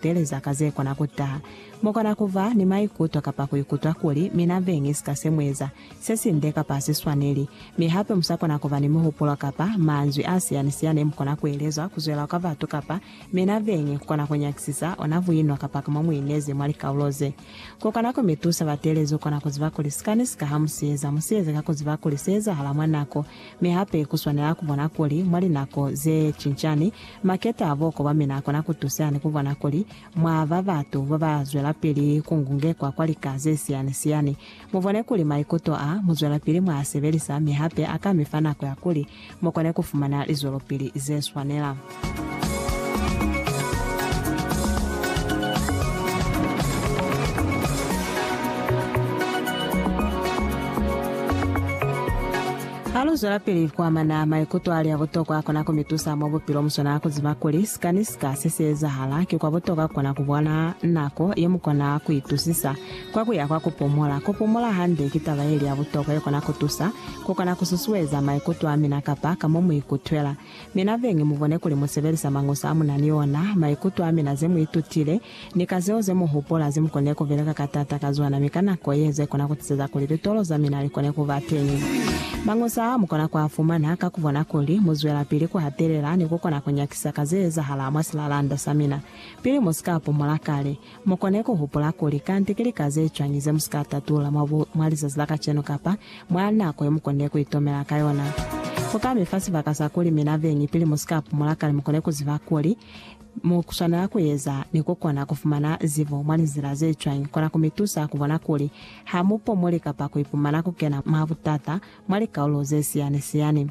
Teeleza ka ze kona ku taha. Mu kona ku ba ni maikuto kapa ku ikutwa kuli mi na beñi si ka se mu eza se sinde kapa ha si swaneli. Mi hape mu sa kona ku ba ni mihupulo kapa manzwi a siyani-siyani ye mu kona ku elezwa ku zwela kwa batu kapa mi na beñi ku kona ku nyakisisa ona buinwa kapa ka mo mu inezi mwa likaulo ze. Ku kona ku mi tusa bateelezi ku kona ku ziba kuli sikani si ka ha mu si eza mu si eze ka ku ziba kuli se ezahala mwa nako Mi hape ku swanela ku bona kuli mwa linako ze cincani, maketa a boko ba mina a kona ku tusa ni ku bona kuli mwa ba batu ba ba zwelapili ku ngungekwa kwa lika ze siyani-siyani. Mu bone kuli maikuto a mu zwelapili mwa a sebelisa mi hape a ka mi fa nako ya kuli mu kone ku fumana lizwelopili ze swanela. Ha lu zwelapili ku amana, maikuto a li a butokwa a kona ku mi tusa mwa bupilo. Mu swanela ku ziba kuli, sika ni sika se si ezahala, ki kwa butokwa ku kona ku bona nako ye mu kona ku itusisa kwa ku ya kwa ku pumola. Ku pumola hande ki taba ye li ya butokwa ye kona ku tusa ku kona ku susueza maikuto a mina kapa ka mo mu ikutwela. Mina vengi mubone kuli musebelisa mangusa amunani ona, maikuto amina zemuitutile, ni ka zeo zemuhupula zemukonile kubeleka ka taata ka zona mi ka nako ye zekona kutiseza kuli litolo zamina likone kuba teñi. Mangusa a mukona kuafumana ka kubona kuli muzwelapili kuhatelela ni kukona kunyakisisa ka zeezahala mwa silalanda samina pili musika pumula kale. Mu kone ku hupula kuli, Kanti ki lika ze cwañi ze mu si ka tatula mwa bu, mwa lizazi la kacenu kapa mwa nako ye mu konile ku itomela ka yona? Ku ka mi fa sibaka sa kuli mina beñi pili mu si ka pumula kale mu kone ku ziba kuli mu swanela ku eza ni ku kona ku fumana zibo mwa linzila ze cwañi kona ku mi tusa ku bona kuli ha mu pomuli kapa ku ipumana ku kena mwa butata mwa likaulo ze siyani-siyani.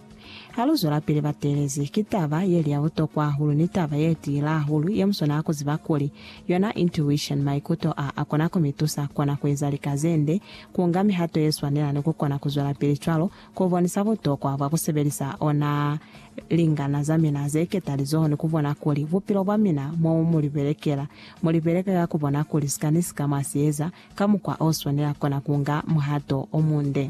Ha lu zwelapili bateelezi, ki taba ye li ya butokwa hahulu ni taba ye tiile hahulu ye muswanela ku ziba kuli, yona intuition, maikuto a a kona ku mi tusa ku kona ku eza lika ze nde, ku nga mihato ye swanela ni ku kona ku zwelapili cwalo, ku bonisa butokwa bwa ku sebelisa ona lingana za mina ze keta lizoho ni ku bona kuli bupilo bwa mina mo mu li belekela, mu li beleka ka ku bona kuli sika ni sika mwa si eza ka mukwa o swanela kona ku nga muhato o munde.